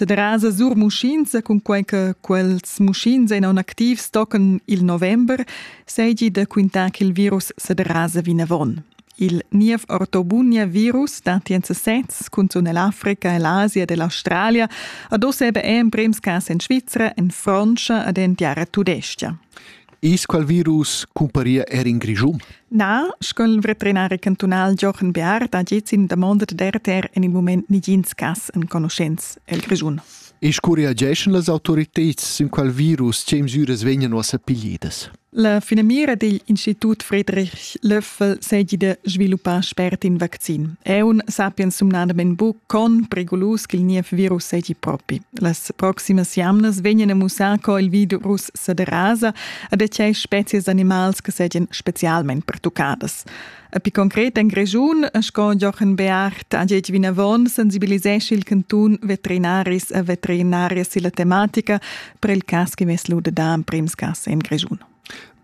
da derasa sur muschins cun quai che quels muschins en activs tocan il november, seigi da quintar che il virus se derasa vinavon. Il niev ortobunia virus dati en sesez cunzun l'Africa e l'Asia dell'Australia ad oss ebe emprems cas en Svizzera, en Francia ad en tiara tudestia. Is qual virus cumparia er in Grischun? Na, sco il veterinari cantunal Jochen Bear da giez in damonda d'RTR en il mument nigins cas enconuschents el Grischun. E scureageschan las autoritads sin qual virus tge mesiras vegnan ussa piglidas? La finamira digl Institut Friedrich Löffel segi de sviluppar spert in vaccin. Eun sapien sumnadamen bu con perigolus ch'il niev virus segi propi. Las proximas jamnas vegnan a mussar co il virus sa derasa a da tgei spezias d'animals che seigien specialmein pertuccadas. A pi concret en Grischun, sco Jochen Beart ha detg vinavon, sensibilisesci il cantun veterinaris e veterinarias silla tematica per il cas che mesluda da emprims cas en Grischun.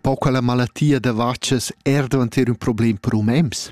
Pau quella malattia da vacas era davanter un problem per umens?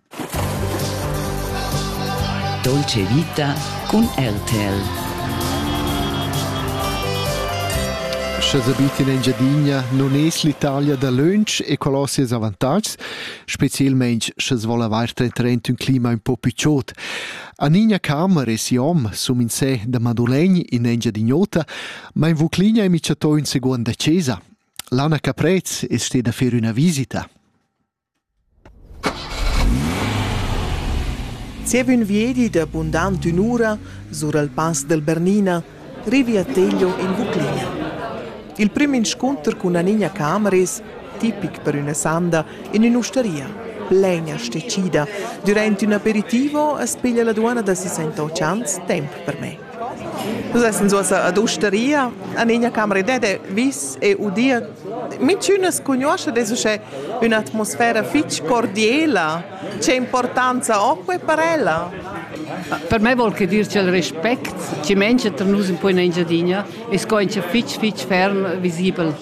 Dolce vita cun RTL. Sche sabitin Engiadina non es l'Italia da lönch e qual ho seis avantatgs, specielmaing sches vol avair trent ün clima ün po picciot. Anigna Carmer e si hom sum in se da Madulegn in Engiadin'Ota, ma in Vucligna è micciato ün seguond da Cesa. L'Anna Caprez è steda a fer üna visita. Zieva ün viedi da bundant ün'ura sur al Pass del Bernina rivi a Teglio in Vuclina. Il prüm inscunter cun Anigna Camris, tipic per üna sanda, in ün'ustaria plain e stecida, dürant ün aperitivo as piglia la duonna da 68 ans temp per me. Nus essan suossa ad ustaria, an egna camera ed è vis e udia. Mintünas cugnuoscha des uschè ün'atmosfera fich cordiela. Che importanza ho que per ella? Per me vol que dir ch'el respect chi mengia tra nus in poina Engiadina e sco in fich fich ferm visibel.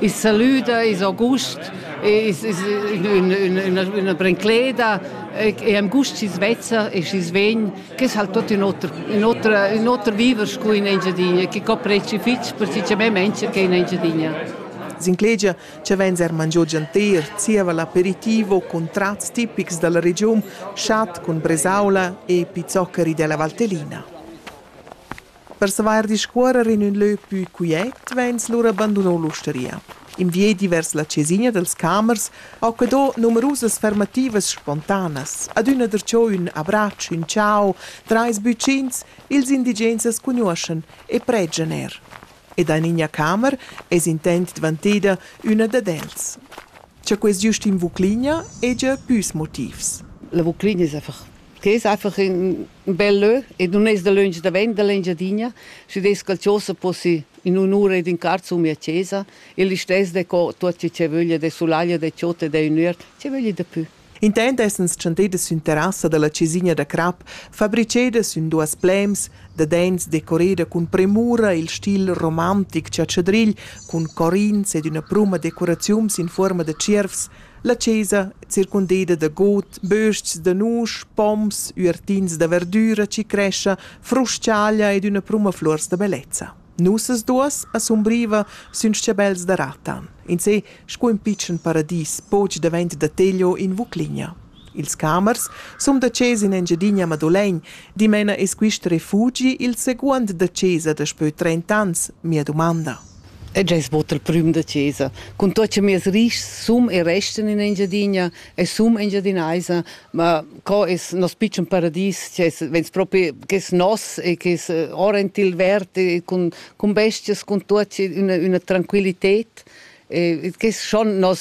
Il salüda, il august, is üna brincleda e am gust chi's vezza e chi's vegn Che s'hal tuot ün oter ün oter ün oter viver scu in Engiadina, che copreschi fich persiccamaints che in Engiadina. S'inclegia cha vains eir mangiò gianter, zieva l'aperitivo cun trats tipics da la regiun, chat cun bresaula e pizzoccheri della Valtellina. Per savair discuorrer in ün lö pü quiet vains lura banduno l'ustaria. In viedi vers la chesina dels camers ho que do numerusas fermativas spontanas, adüna darcheu ün abratsch, ün ciao, trais bütschins, ils indigens as cugnuoschan e pregian eir. Ed in iina camer es intent dvanteda üna dad els. Cha quest giust in Vuclina hegia püs motivs. La Vuclina es Che es einfach ün bel lö e nun es dalöntsch davent da l'Engiadina. Schi dess cha'l Chosa possi in un'ura ed ün quart sun mia chesa e listess decò tuot chi vöglia de sulaglia, de chod e de ün üert, chi vögli dapü. Intant essans tschantedas sün terrassa da la chesina da crap, fabricedas sün duos plems, da dents decoreda cun premura il stil romantic chatschadrigl cun corins ed üna pruma decoraziuns in fuorma da tschiervs, La chesa, circundeda da god, bös-chs da nusch, poms, üertins da verdüra chi crescha, frus-chaglia ed üna pruma fluors da bellezza. Nossas duos asumbriva sün s-chabels da ratan. In se, sco ün pitschen paradis, poch davent da Teglio in Vucligna. Ils camers sun da chesa in Engiadina Madolegn. Dimena es quist refugi il seguond da chesa daspö trent'ans, mia dumanda. ed eis bod il prüm da chesa. Cun tuot che mieus rischs sun e restan in Engiadina e sun engiadinaisa, ma co es nos pitschen paradis, che es vegns propi, che es nos e che es orrend il vert e cun, cun bestias, cun tuot üna, üna tranquillited, e che es schon nos